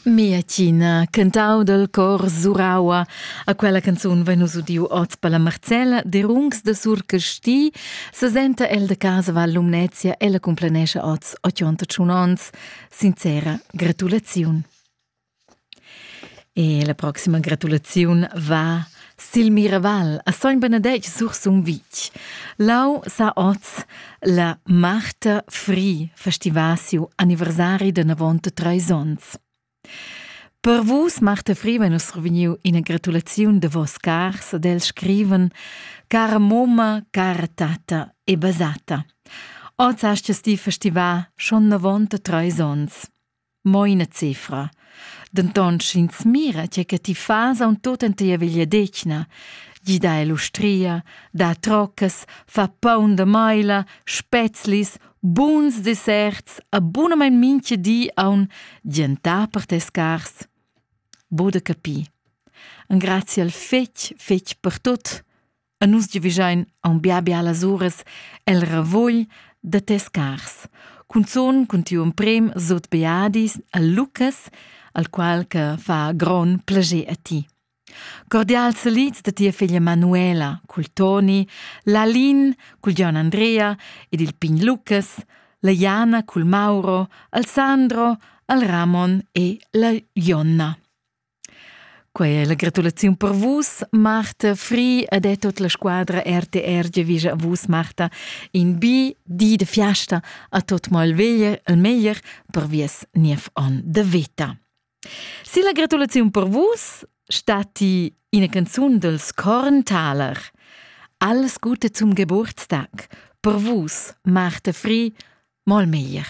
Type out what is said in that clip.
Mia Tina, cantau dal cor Suraua. A quella canzun vein nus udiu oz per la Marcella Derungs de Surcasti, sesenta el de casa Val Lumnezia e la cumplanescha oz 81 onns. Sincera gratulaziun. E la proxima gratulaziun va sil Miraval a Sogn Benedetg sur Sumvitg. Lau sa oz la Marta Fri festiva siu anniversari de 93 onns. Per vus, Marta Fri, vegn nus reveniu ina gratulaziun de vos cars ad el scriven Cara moma, cara tata e basata. Oz hast ti festivà schon 93 onns. Mo ina cefra. Denton sch'ins mira tge che ti fas aunc tut en tia vegliadetgna, gida el ustria, da troccas, fa paun da maila, spezlis, buns desserts a bunamein mintga di aun gentar per tes cars. Bude capi. Engrazia al fetg, fetg per tut. A nus giavischein aunc bia bialas uras el ravugl da tes cars. Cunzun cun tiu emprem sot beadis a Lucas, al qual che fa gron plager a ti. Cordial salits da tia figlia Manuela cul Toni, l'Alin cul Gian Andrea ed il pign Lucas, la Jana cul Mauro, al Sandro, al Ramon e la Jonna. Quei è la gratulaziun per vus, Marta Fri, ed è tut la squadra RTR giavischa a vus, Marta, in bi di de fiasta a tot mal veglier, il meglier per vies niev on de veta. Si la gratulaziun per vus stati ina canzun dels Korntaler. Alles Gute zum Geburtstag, per vus, Marta Fri, mal meglier.